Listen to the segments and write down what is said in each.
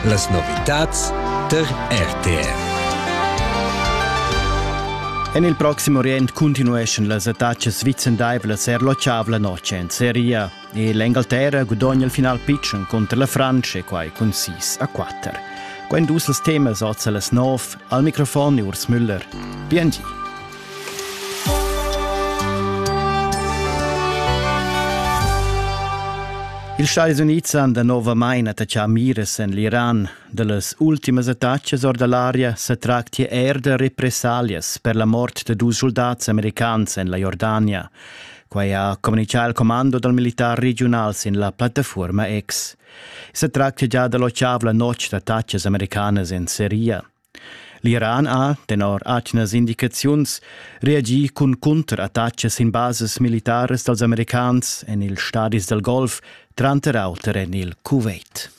Las novitads tar RTR. En il Proxim Orient continueschan las attacas vicendaivlas er l'otschavla notg en Seria e l'Engalterra gudogna il final pitschen contra la Frantscha e quai cun 6 a 4. Quando dus els temas oz a las 9 al microfon Urs Müller. Bien di. Ils Stadis Unids han danovamain attaccà miras en l'Iran. Da las ultimas attacas or da l'aria sa tractia er da repressalias per la mort da dus soldats americans en la Jordania. Quai ha communichà il comando dal militar regional sin la plattafuorma X. Se tractia già da l'otgav la notg d'attacas americanas en Siria. L'Iran ha, tenor atgnas indicaziuns, reagì cun cunterattacas sin basas militaras dals americans en ils stadis dal Golf, tranter auter en il Kuwait.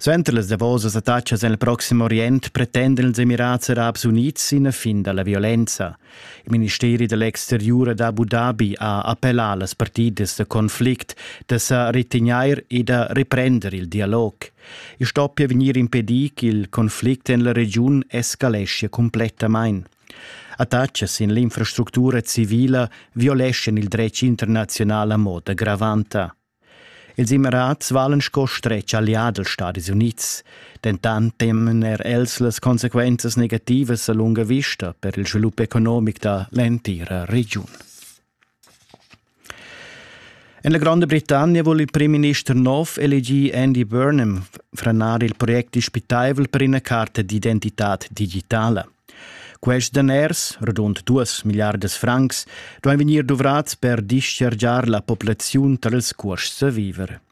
Suenter las davosas attacas en il Proxim Orient pretendan ils Emirats Arabs Unids ina fin da la violenza. Il ministeri dell'exteriur d'Abu Dhabi ha appellà las partidas da conflict da sa retegnair e da reprender il dialog. I stoppia vegnir impedì ch'il conflict en la regiun escaleschia cumplettamain. Attachas sin l'infrastructura civila violeschan il dretg internaziunal a moda gravanta. Ils Emirats valen sco stretg allià dels Stadis Unids, dentant temen er els las consequenzas negativas a lunga vista per il svilup economic da l'entira regiun. En la Gronda Britannia vul il primminister nov elegir Andy Burnham, franar il project dispitaivel per ina carta d'identitad digitala. Quests daners, rodund duas milliardas francs, duain vegnir duvrads per dischargiar la populaziun tar ils cuosts da viver.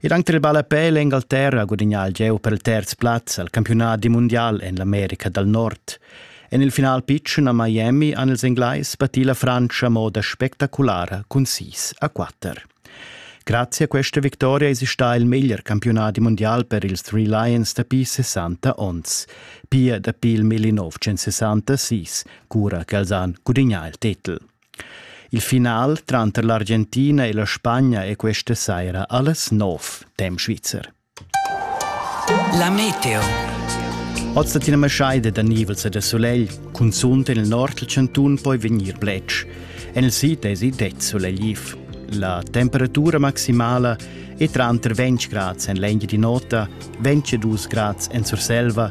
Ed anc tel ballapè l'Engalterra ha gudagnà il gieu per il terz plaz al campiunadi mundial en l'America dal Nord. En il final pitschen a Miami han ils Englais battì la Frantscha a moda spectaculara cun 6 a 4. Grazie a questa vittoria è stà il meglier campiunadi mondial per ils Three Lions dapi 60 onns. Pia dapi il 1966, cura ch'els han gudagnà il titel. Il final tranter l'Argentina e la Spagna è questa saira alles nov, dem Schweizer. La meteo. Oz dat ina maschaida da nivels e da solegl, cunzunt en il nord del Cantun poi vegnir bletsch. En il sid è det solegliv. La temperatura maximala è tranter 20 grads en l'Engia di Nota, 22 grads en Surselva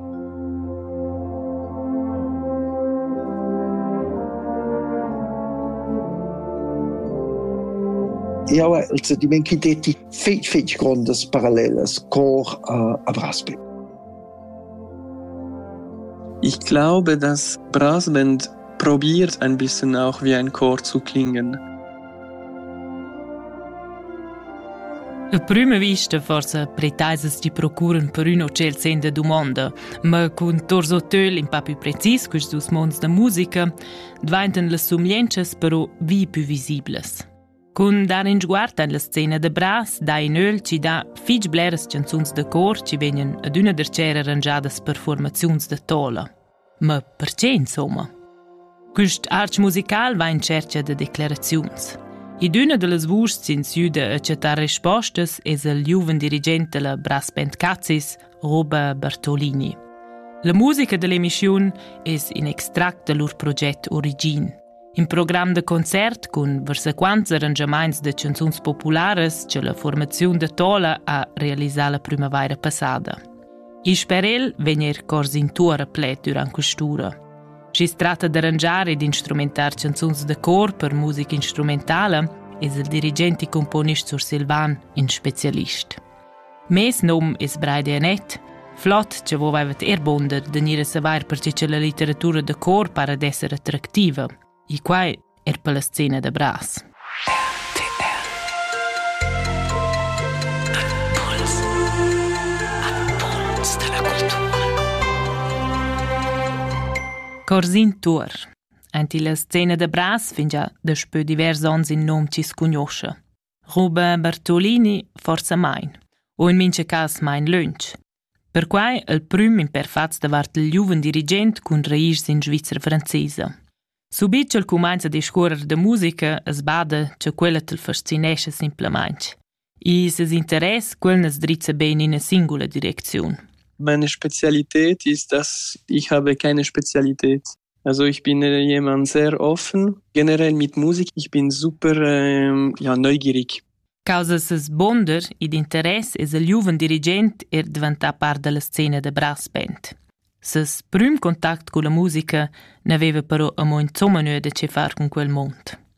Jau hai il sentiment ch'i detti fitg, fitg grondas parallelas cor uh, a Brasbent. Ich glaube, dass Brasbent Probiert ein bissen auch wie ein Chor zu klingen. A prüma vista forsa pretaisas ti procuran per ün hotel senza dumonda, ma cun Tos Hotel in pa più precis quist dus monds da musica, dvaintan las sumientschas però vi più visiblas. Cun dar in sguard en la scena da Bras dà in öl ci dà fich bleras canzuns da cor ci vegnan adüna darchera arrangiadas per formaziuns da tola. Ma pertgé insomma? Quist arch musical va in tschercha da declaraziuns. Ed üna da las vuschs ins jüda a chattar respostas es il giuven dirigent da la Brass Band Cazis, Roba Bertolini. La musica da l'emischiun es in extract da lur proget Origin. In program da concert cun varsaquants arrangiamaints da chanzuns popularas che la formaziun da Tola ha realisà la prümavaira passada. Isch per el vegn er cors in tuor a pled durant quest'ura. Schi's tratta d'arrangiar ed instrumentar chanzuns da cor per musica instrumentala es il dirigent e componist sursilvan in specialist. Mes num es Braide Anett. Flott cha vo vaivat eir buonder da gnir a savair perche cha la litteratura da cor para d'esser attractiva. E quai er per la scena da bras. Corsin Tuor. Ant illa scena da bras fingia daspö divers ons in nom chi scugnoscha. Ruben Bartolini forsamain u in mincha cas main lönch. Perquai il prüm imperfats davart il giuven dirigent cun reis in Svizra francesa. Subit ch'el cumainza a discuorrer da musica as bada cha quella t'l fascinescha simplamaing. E ses interess quel nes drizza ben in ina singula direcziun. Meine Spezialität ist, dass ich habe keine Spezialität. Also ich bin jemand sehr offen. Generell mit Musik, ich bin super ähm, ja, neugierig. Causa ses bonder ed interess es il giuven dirigent er diventà part della scena da brass band. Ses prüm contact con la musica n'aveva però amo insomma nuo da che far con quel mond.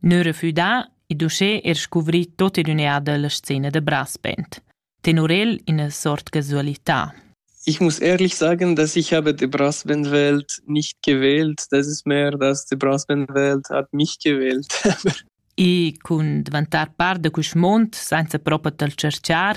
Neu refüdà, id uschè er scuvri tot in ün'eada la scena da Braspent. Tenor el ina sort casualità. Ich muss ehrlich sagen, dass ich habe die Brassbandwelt nicht gewählt. Das ist mehr, dass die Brassbandwelt hat mich gewählt. I cun dvantar part da quist mond senza propa tal cerchar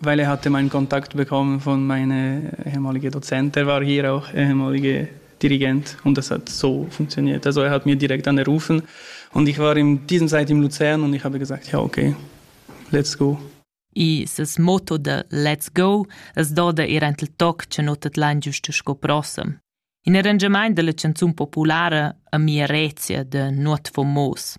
Weil er hatte meinen Kontakt bekommen von meiner ehemaligen Dozent, er war hier auch ehemaliger Dirigent und das hat so funktioniert. Also er hat mir direkt angerufen und ich war in dieser Zeit in Luzern und ich habe gesagt, ja okay, let's go. E ses motto de Let's go es doda ir ent il toc che no tet lan giusto sco prossem. In arrangiament della canzun populara a mia Rezia de Not Fomos.